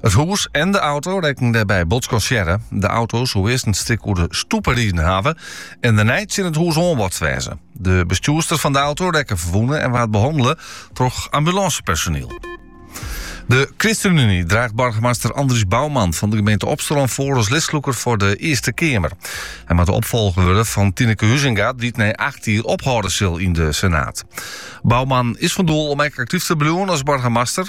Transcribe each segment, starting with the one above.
It hûs en de auto rekken dêrby bot skansearre. De auto soe earst in stik oer de stoepe riden hawwe en dêrnei tsjin it hûs oanbotst wêze. De bestjoerster fan de auto rekke ferwûne en waard behannele troch ambulânsepersoniel. De ChristenUnie draacht boargemaster Andries Bouwman fan de gemeente Opsterlân foar as listlûker foar de Earste Keamer. Hy moat de opfolger wurde fan Tineke Huizinga, dy't nei acht jier ophâlde sil yn de Senaat. Bouwman is fan doel om ek aktyf te bliuwen as boargemaster.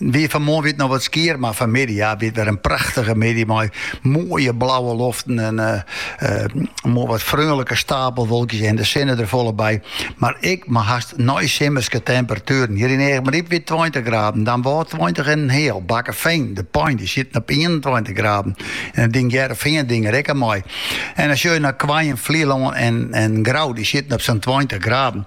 Wie fan moarn wit noch wat skier, mar fan midden ja, wit wer in prachtige midden mei mooie blauwe loften en uh, uh, wat freunlijke stapelwolkjes en de sinne er volle bij. Maar ik maar haast nooit simmerske temperaturen. Hier in eigen riep weer 20 graden, dan wel 20 en een heel. Bakkenveen, de pijn, die zit op 21 graden. En het ding Jerveen ding er ik mooi. En als je naar Kwaaien, Vlieland en, en Grauw, die zitten op zo'n 20 graden.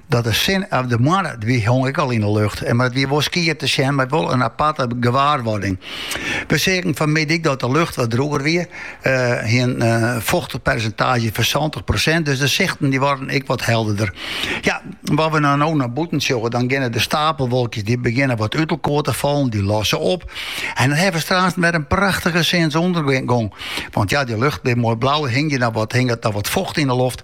Dat de sinne of de moanne wie hong ek al yn 'e lucht, mar it wie wol skier te sjen mei wol in aparte gewaarwurding. We seagen fanmiddei ek dat de lucht wat droeger wie, hie in fochtpersentaazje fan santich prosint, dus de sichten dy waarden ek wat helderder. Ja, at we no nei bûten sjogge, dan geane de stapelwolkjes dy begjinne wat út elkoar te fallen, dy losse op en dan hawwe we straks wer in prachtige sinsûndergong, want ja, dy lucht, dy moai blauwe, hinget noch wat focht yn 'e loft.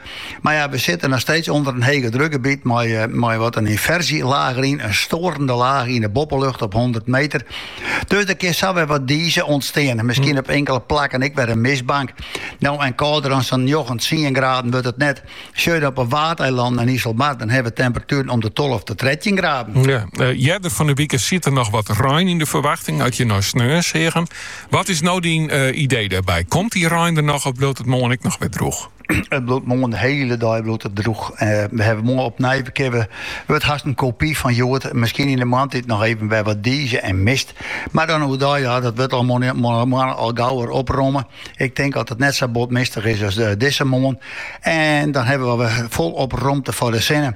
Mar ja, we sitte noch steeds ûnder in hege drukgebiet mei, eh, mei wat in inversjelaach deryn, in storende laach yn de boppelucht op 100 meter. Dus der kin sa wer wat dieze ûntstean. Miskien hm. op inkele plakken ik wer een mistbank. Nou, en kouder dan zo'n 9, 10 graden wordt het net. Sjoe je op een waardeiland en IJsselmar, dan hebben temperaturen om de 12 tot 13 graden. Ja, uh, van de week zit er nog wat rein in de verwachting. Had je nou sneur zeggen. Wat is nou die eh, idee daarbij? Komt die rein er nog of bloot het morgen ik nog weer droeg? It bliuwt moarn de hiele dei bliuwt it droech. Eh, we hawwe moarn opnij we kinne wurdt hast in kopy fan hjoed. Miskien yn de moarntyd noch even wer wat diizje en mist. Mar dan oerdei, ja, dat wurdt al moarn al gau wer opromme. Ik tink dat it net sa bot mistich is as dizze moarn. En dan hawwe we wer folop romte foar de sinne.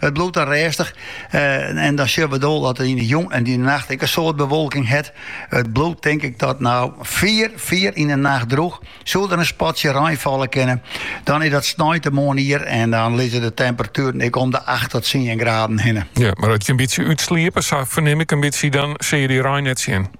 It bliuwt dan rêstich en dan sjoch bedoel dat it yn 'e jûn en yn 'e nacht ek in soad bewolking hat. It bliuwt tink ik tot no fier fier yn 'e nacht droech. Soe der in spatsje rein falle kinne, dan is dat sneintemoarn ier en dan lizze de temperatueren ek om de acht tot tsien graden hinne. Ja, mar at je in bytsje útsliepe, sa fernim ik in bytsje, dan sil je dy rein net sjen.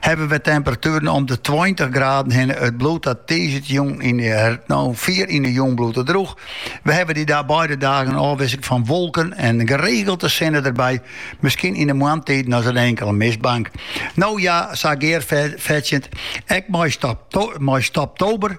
hawwe we temperatueren om de 20 graden hinne. It bliuwt tot tiisdeitejûn yn de no fier yn de jûn bliuwt it droech. We hawwe dy da beide dagen in ôfwisseling fan wolken en geregelte sinne derby. Miskien yn de moarntiden ris in inkele mistbank. No ja, sa Gear fertsjend, ek mei stoptober